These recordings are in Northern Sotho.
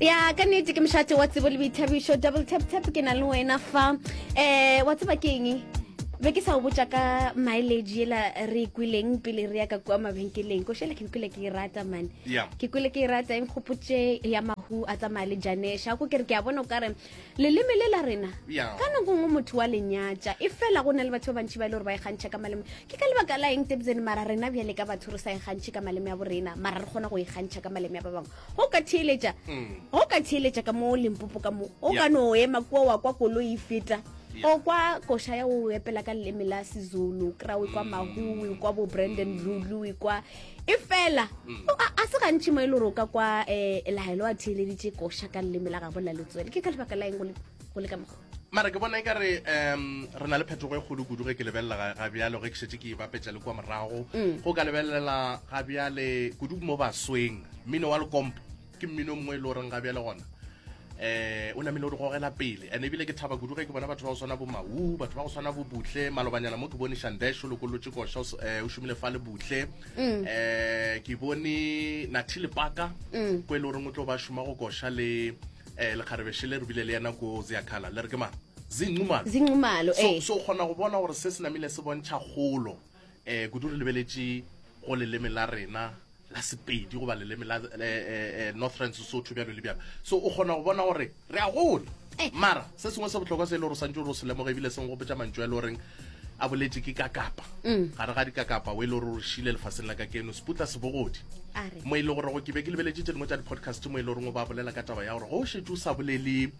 ya ka nnete ke mošate wa tsebo le boithabišo double tap tap ke na le wena fa um wa tseba ke eng be ke sa o botsa ka mileage ela re e kweleng pele re ya ka kua mabenkeleng ko shela ke kwele ke e rata mane ke kwele ke e rata e nkgopotse ya mahu a tsamaya le janesha ko kere ke a bona o kare leleme le la rena ka nako ngwe motho wa lenyatša e fela go na le batho ba bantši ba e le gore ba ikgantšha e ka maleme ke ka lebaka la eng tebzene mara rena bjale ka batho re sa ikgantšhe e ka maleme ya bo rena mara re kgona go ikgantšha e ka maleme ya ba bangwe go ka theeletša mm. go ka theeletša ka mo lempopo ka mo o ka no ema kua wa kwa koloi e feta o kwa koša ya o epela ka leleme la sezulu krawe kwa mm. mahuwe kwa bo brandon rulu kwa e fela mm. a se gantši mo e le gore o ka kwa um laelo a theeleditše koša ka leleme la gabo la letswele ke ka lebaka la eng go le ka mokgo mara ke bona e ka re um re na le phetogo e kgolo kudu ge ke lebelela ga bjale ge ke šetse ke ibapetša le kwa morago mm. go ka lebelela ga bjale kudu mo basweng mmino wa lekompo ke mmino mongwe e le goreng ga bjale gona eh o namile o re gogela pele and ebile ke thaba kudu ge ke bona batho ba go swana bo mau batho ba go swana bo butle malobanyana mo ke bone shandesho lokolotse kosha eh, o šomile fa le butle um ke bone nathi lepaka mm. ko e le goreng o tlo ba šoma go kosha le um lekgarebeshe le re bile le yena ko zeakhala le re ke mang zinqumalo zinqumalo so eh. o kgona go bona gore se se namile se bontšha kgolo eh, kudu re lebeletše go leleme la rena la sepedi goba leleme la eh, eh, eh, northern sesotho bjalo le bjalo so o kgona go bona gore re a gola Eh. mara se sengwe se botlhokwa se e le gore santse o re o se lemoge ebile seng go botsa mantšu a e le goreng a boletse ke ka kapa Mm. gare ga dikakapa o e le gore o re šile lefaseng la ka keno seputla sebogodi a re mo e le gore go ke be ke lebeletse tse dingwe tsa di-podcast mo e le goreng o ba bolela ka taba ya gore go šetse o sa bolele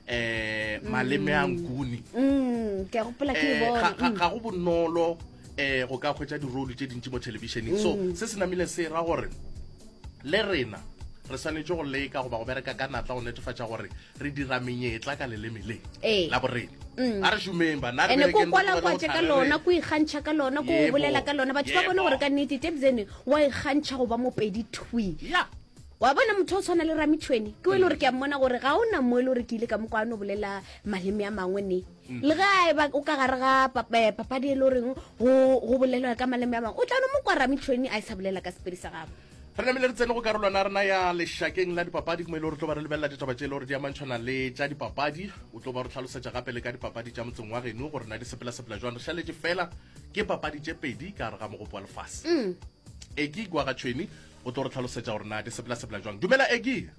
eh maleme a nkuni mm, ke gopola ke eh, bona ga mm. go bonolo eh go ka khwetsa dirole tse dintsi mo televisioneng so mm. se se namile se ra gore le rena re swanetse go leka goba go bereka ka natla go netefatsa gore re dira menyetla ka leleme le ee. la borena mm. a re šomeng banaene ko kwalakwatše ka lona ko ikgantšha ka lona ko bolela ka lona batho ba bone gore ka nnete tebzene wa ikgantšha go ba mopedi twi wa bona motho o tshwana le ramitšhweni ke o e le gore ke a mmona gore ga o na mo e le gore ke ile ka mo kwa no bolela maleme a mangwe ne mm. le ga e ba o ka gare ga eh, papadi e le goreng go bolelwa ka maleme a mangwe o tla no mo kwa ramitšhweni a e sa bolela ka sepedi sa gago re namile re tsene go karolwana rena ya lešakeng la dipapadi mo e le gore tlo ba re lebelela ditaba tse e le gore di amantšhwana le tša dipapadi o tlo ba re tlhalosetša gape le ka dipapadi tša motseng wa geno gore na di sepela-sepela jwang re šaletse fela ke papadi tše pedi ka gare ga mogopo wa lefase mm. eki gwagatšhweni o tlo re tlhalosetša gore na di sepela sepela jwang dumela egi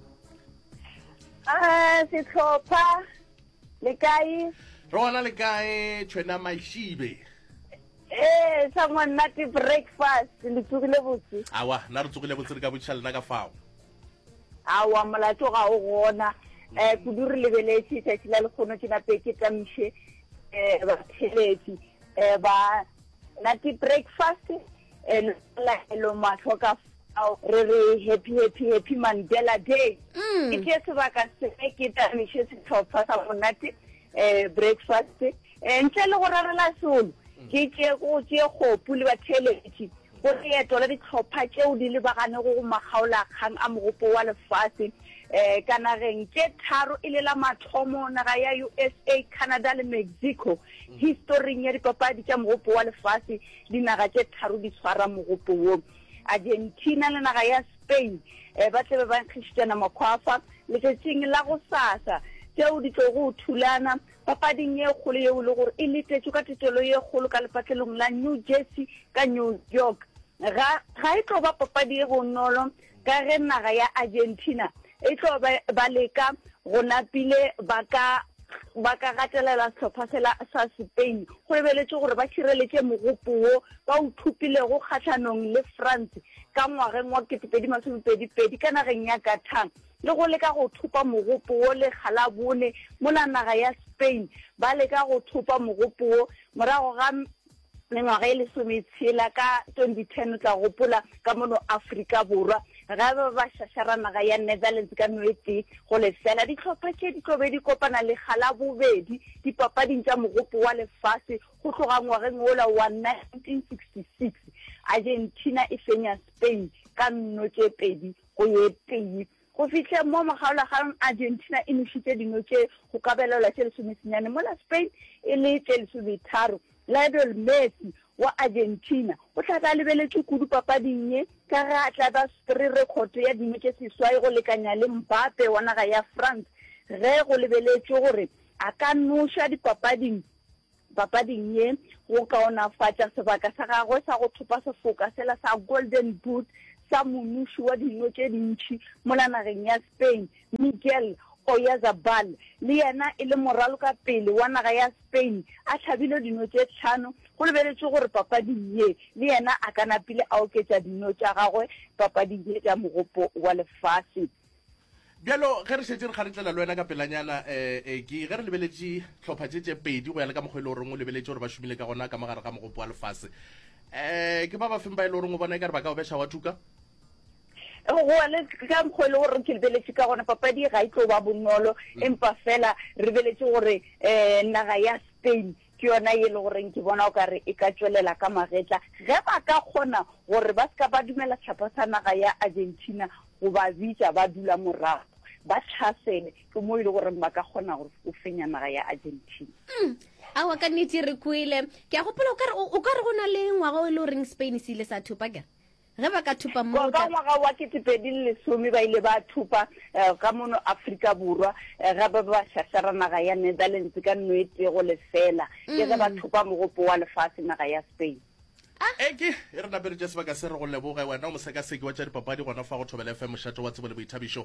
ah, setlhopha le kae re gona le kae tšhwena mašibe ee eh, sa monate breakfast le tsogile botse awa na re tsogile botse re ka botšiša lena ka fao awa molato ga o gona um kudu re lebeletse tšatši la lekgono ke nape ke tamiše um eh, batheletsi um ba nate breakfast and la hello mahlo ka fao re re happy happy happy mandela day mm. ke tše sebaka se ke tamiše setlhopha sa monate um breakfast um ntle le go rarela solo mm. ke tše go tše kgopu le batheletši go leeto la ditlhopha tšeo di lebagane go go makgaolakgang a mogopo wa lefase um ka nageng tše tharo e le la mathomo naga ya usa canada le mexico historing ya dipapadi tša mogopo wa lefase Dinaga tše tharo di tshwara mogopo wo. Argentina le naga ya Spain eh, ba tlabe ba nkgišitšana makhwafa letšatšing la go sasa, tšeo di tlogo o thulana papading ye kgolo yeo e le gore e letetšwe ka tetelo ye kgolo ka lepatlelong la New Jersey ka New York. Ga, ga e tlo ba papadi e bonolo ka ge naga ya Argentina e tlo ba ba leka go napile ba ka ba ka gatelela sehlopha sela sa Spain go lebeletšwe gore ba šireletše mogopo wo ba o thopilego kgahlanong le France ka ngwageng wa 2022 ka nageng ya Qatar le go leka go thopa mogopo wo lekga la bone mola naga ya Spain ba leka go thopa mogopo wo morago ga Mengwaga e lesometshela ka 2010, o tla gopola ka mono Afrika Borwa, ge ba ba šašara naga ya Netherlands ka no e tee go lefela. Dihlopha tše di tlo be di kopana lekga la bobedi dipapading tša Mogopo wa Lefase go tloga ngwageng wola wa 1966, Argentina e fenya Spain ka nno tše pedi go ye tee. Go fihleng mo mokgaolagang, Argentina e nošitše dino tše go ka belelwa tše lesomesenyane mola Spain e le tše lesometharo. Lionel Messi wa Argentina o tla be a lebeletšwe kudu papading ye ka ge a tla be a swere rekhoto ya dino tše seswai go lekanya le Mbappe wa naga ya France ge go lebeletšwe gore a ka noša dipapading Papading ye, go kaonafatša sebaka sa gagwe sa go thopa sefoka sela sa Golden Boot sa monuši wa dino tše dintši mola nageng ya Spain, Miguel Oyarzabal, le yena e le moralokapele wa naga ya Spain, a hlabile dino tše hlano, go lebeletšwe gore papading ye le yena a ka napile a oketša dino tša gagwe papading ye tša Mogopo wa Lefase. bjalo ge re šetse re kgaretlela le wena ka pelanyana um eh, eki eh, ge re lebeletše tlhopha tše tše pedi go ya le ka mokgwa e le goreng o lebeletše gore ba šomile ka gona ka mogare ga mogopo wa lefase um ke ba ba feng ba e le goreng o bona e ka re ba ka o beša wa thuka gone ka mokgwa e le gore ke lebeletše ka gona papadi ga e tlo ba bonolo mm. empa fela re beletše gore um naga ya spain Ke yona ye e le goreng ke bona o ka re e ka tšwelela ka magetla ge ba ka kgona gore ba se ka ba dumela sehlopha sa naga ya Argentina go ba bitša ba dula morago ba tlhasele, ke mo e le goreng ba ka kgona go fenya naga ya Argentina. Mm, awa ka nnete re kwele. Ke a gopola o ka re o ka re go na le ngwaga o e le goreng Spain se ile sa thopa kere? Ge ba ka thupa mo go tla. Ka ngwaga wa ketepedi le lesome ba ile ba thupa ka mono Afrika Borwa ge ba be ba šašara naga ya Netherlands ka nno e tee go lefela ke ge ba thupa mogopo wa lefase naga ya Spain. Eke e re napeletše sebaka se re go leboge wena o mosekaseki wa tša dipapadi gona fa go Thobela FM mošate wa tsebo le boithabišo.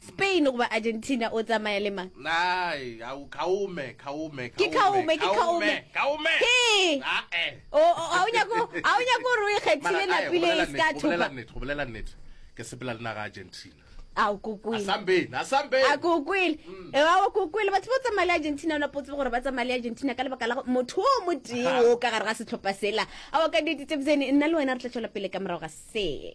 Spain goba Argentina o tsamaya le mang? Nai, au, Kaume, Kaume, Ke Kaume, ke Kaume. Kaume. Hee. Ae. O o- ha o nyako ha o nyako gore o ikgethile Mara, ae, napile gobolela e se ka nnete, thopa. gobolela nnete, gobolela nnete. Ke sepela le naga Argentina. A o kokwele. Asambeni, asambeni. A ko o kwele. E ba o ko o kwele. Batho ba o tsamaya le Argentina o na potse gore ba tsamaya le Argentina ka lebaka la go- motho o mo tee Ha. o ka gare ga setlhopha sela. A o ka dite tse bzene nna le wena re tla tšwela pele ka morago ga se.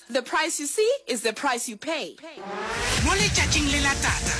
The price you see is the price you pay. Mo letšatšing le la tata.